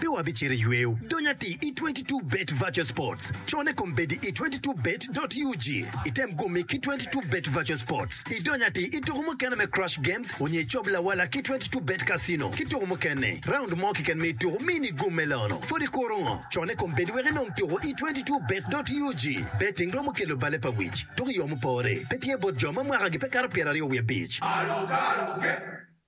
Pe wabicito i yweyo dony atir i 22 Bet Virtual Sports. Cone kom bedi i 22 Bet dot ug. Item gumi ki 22 Bet Virtual Sports, idony atir i tuku mukene me Crush Games onyo icob lawala ki 22 Bet Casino ki tuku mukene. Raund mo keken me tuku mi ni gum me lono. Pwod ikuro ngo? Cone kom bedi wek inong tuku i 22 Bet dot ug. Betting romo kelo bale pa wic, tuku i yo mupore. Pe tye bot jo ma mwakagi pe kato pyeraryo wiye abic.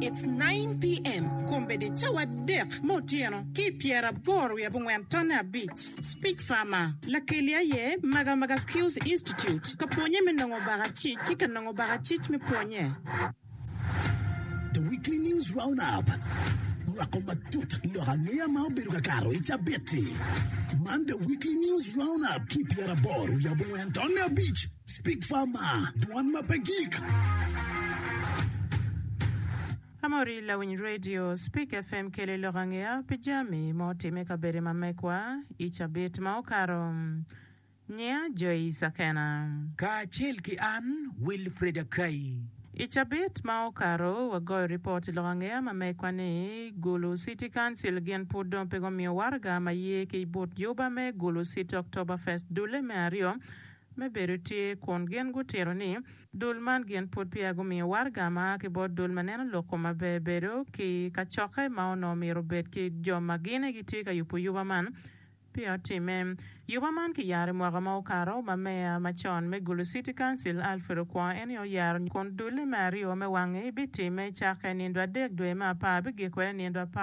It's nine PM, Kombeddi cawa adek me otyeno ki i pyeraboro wiye abongwen tonne abic. Speech Farmer. Lakeli aye Magamaga Skills Institute ka pwonye me nongo baka cic ki ka nongo baka cic me pwonye. The Weekly News Roundup rwako matut lok angeya ma obedo ka kato i cabit-ti. Man The Weekly News Roundup ki i pyeraboro wiye abongwen tonne abic. Speak Farmer, dwan ma pe gik. Ka ma ori lawiny radio, Speak FM kelo i lok angeya pi jami ma otimme i kabedo ma mekwa i cabit ma okato. Nyiya Joyce Akena. Kacel ki an, Wilfred Akai. I cabit ma okato, wagoyo ripot i lok angeya ma mekwa ni Gulu City Council gin pud dong pe gumiyo waraga ma ye ki but juba me Gulu City Oktoberfest dulle me aryo, me bedo tye kun gin gutito ni dul man gin pud peya gumiyo waraga ma a ki bot dul ma neno lok kom maber bedo ki kacokke ma onongo myero obed ki jo ma gine gitye ka yubo yuba man peya otimme. Yuba man kiyaro i mwaka ma okato ma meya macon me Gulu City Council Alfred Okwongo en aye oyaro kun dulle me aryo me wangi bitimme cakke nindo adek dwe me apar bigik kwede nindo apar.